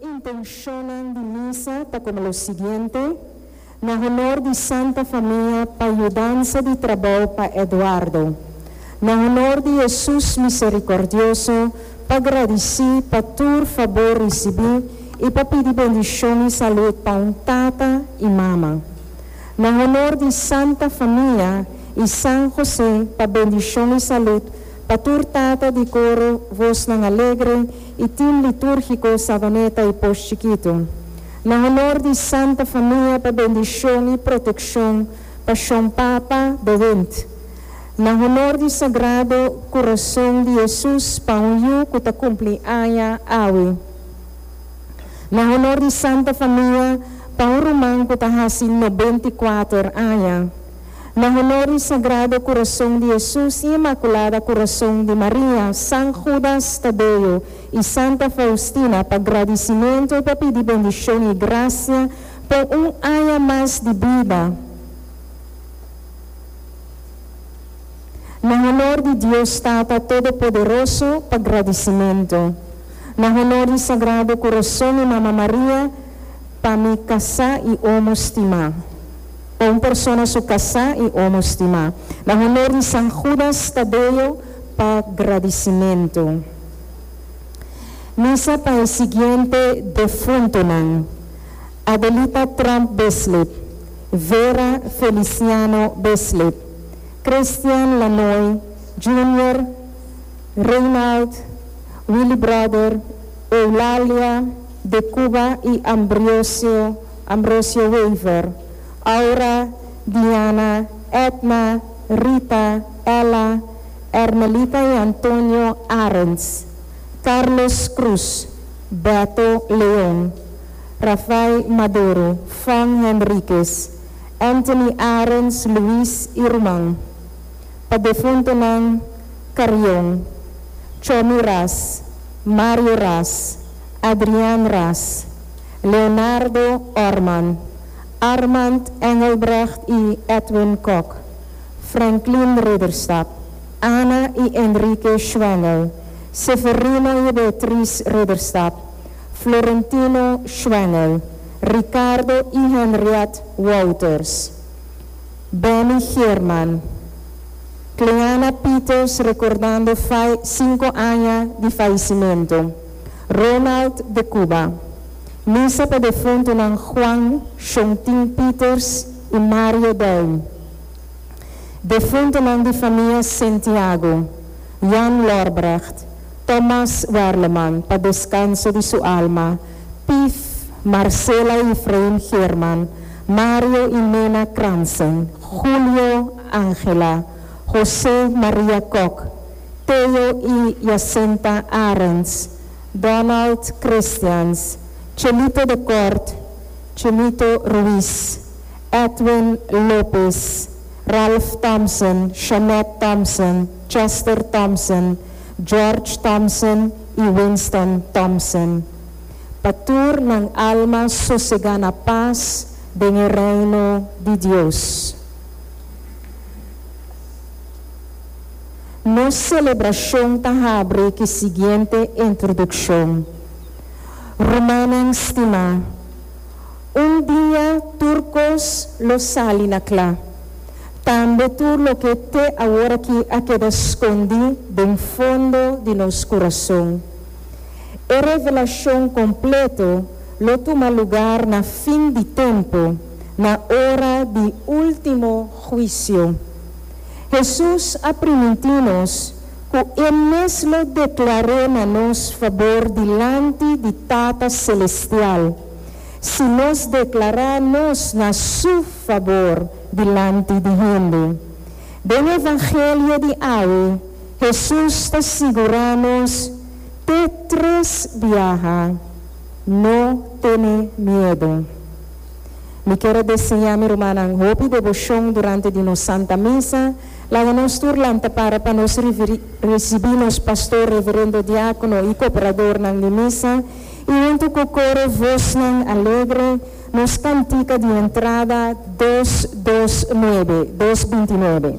Intenshonnan di misa ta komo lo siguiente, Na honor di Santa Famia pa yudansa di trabou pa Eduardo. Na honor di Hesus Miserikordioso pa gradisí pa tur fabor risibí i pa pidi bendishon i salut pa un tata i mama. Na honor di Santa Famia i San José pa bendishon i salut pa tur tata di koro vosnan alegre y tin litúrgico Savaneta y Posh Chikitu, na honor di Santa Famia pa bendicion y proteccion pa Shon Papa de Wind, na honor di Sagrado Curazon di Hesus pa un yu cu ta cumpli aña awe, na honor di Santa Famia pa un ruman cu ta haci nobenta y kuater aña. Na honor di Sagrado Kurason di Hesus i Imakulada Kurason di Maria, San Hudas Tadeo i Santa Faustina, pa gradisimentu i pa pidi bendishon i grasia pa un aña mas di bida. Na honor di Dios Tata Todopoderoso, pa gradisimentu. Na honor di Sagrado Kurason i Mama Maria, pa mi kasá i omo stimá. pa un persona su kasá i omo stimá. Na honor di San Judas Tadeo pa gradisimentu. Misa pa e siguiente defuntunan, Adelita Tromp Besley, Vera Feliciano Besley, Christian Lanoy, Junior, Reynald, Willy Brother, Eulalia de Cuba i Ambriosio. Ambrosio Wever, Aura, Diana, Edna, Rita, Ella, Ermelita y Antonio Arends, Carlos Cruz, Beto Leon, Rafai Madoro, Fong Henriquez, Anthony Arends, Luis y ruman pa defuntonan Carrion, Chomi Ras, Mario Ras, Adrian Ras, Leonardo Orman, Armand Engelbrecht i Edwin Kok, Franklin Ridderstap, Anna i Enrique Schwengel, Severino i Beatriz Ridderstap, Florentino Schwengel, Ricardo i Henriette Wouters, Benny Geerman, Cleana Pieters rekordando fai sinku aña di faisimentu. Ronald de Cuba, misa pa defuntunan Juan Shontin Pieters y Mario Duin, defuntunan di famia Sentiago, Jan Lorbrecht, Thomas Werleman pa descanso di su alma, Pief, Marcela y Efraim Geerman, Mario y Nena Kransen, Julio, Angela, Jose, Maria Kok, Theo y Jacinta Arends, Donald Christians, Chelito de Kort, Chelito Ruiz, Edwin Lopez, Ralph Thompson, Shanette Thompson, Chester Thompson, George Thompson y Winston Thompson. Pa tur nan alma sosega na pas den e Reino di Dios. Nos selebrashon ta habri ki siguiente introdukshon, Rumannan stimá, un dia tur kos lo sali na kla, tambe tur loke te aworakí a keda skondí den fondo di nos kurason. E revelashon kompleto lo tuma lugar na fin di tempu, na ora di último huisio. Hesus a primintí nos ku e mes lo deklar'é na nos fabor dilanti di Tata Selestial si nos deklará nos na Su fabor dilanti di hende. Den e Evangelio di awe, Hesus ta sigurá nos te tres biaha, No tene miedu. Mi kier a deseá mi rumannan hopi deboshon durante di nos Santa Misa. Laga nos tur lanta para pa nos risibí nos pastor, reverendo, diákono i kooperadornan di Misa, i huntu ku koro vosnan alegre nos kantika di entrada dos dos nuebe, dos binti nuebe.